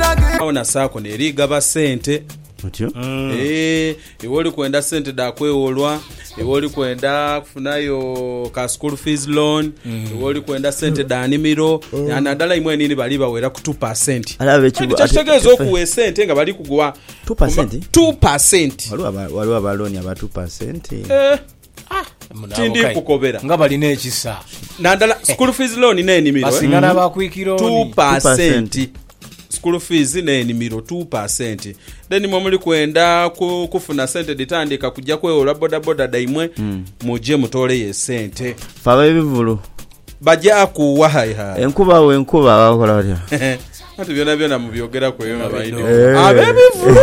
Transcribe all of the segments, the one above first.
Agho na saako n'eri gaba sente. Otyo. Eh, iwe oli kwenda sente dha kwewolwa iwe oli kwenda kufunayo ka school fees loan iwe oli kwenda sente dha nimiro na- nadala imwe nini bali bawera ku 2 Ala abe kibu- kyekitegeeza ate- okuwa esente nga bali kuguwa 2%? 2 Waliwo aba- waliwo aba looni aba 2%. Eh. Tindikukobera. Nga bali n'ekisa. Nadala school fees loan n'enimiro. Basinga n'aba quick loan. Two percent. School fees n'enimiro two percent. Then mwe muli kwenda kufuna sente dhitandiika kujja kwewola bodaboda dhaimwe, hmm. muje mutooleyo esente. Fe ab'ebivulu. Baja kuwa hai hai. Enkuba wo enkuba bakola batya? Ati byona byona mubyogeraku eyo nga baidhi Eh. ab'ebivulu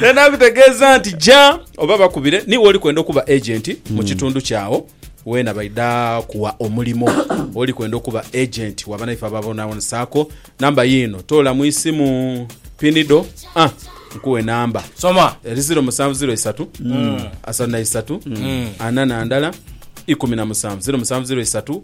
naye nakutegeeza nti ja oba bakubire niwe oli kwenda okuba agenti Hmm. mu kitundu kyawo weena baidha kuwa omulimo oli kwenda okuba agenti waba naife ababonabonesaako namba yiino toola mu isimu pinido ah, nkuwe namba Soma. eri 0 musanvu 0 isatu asatu na isatu ana na ndala ikumi na musanvu 0 musanvu 0 isatu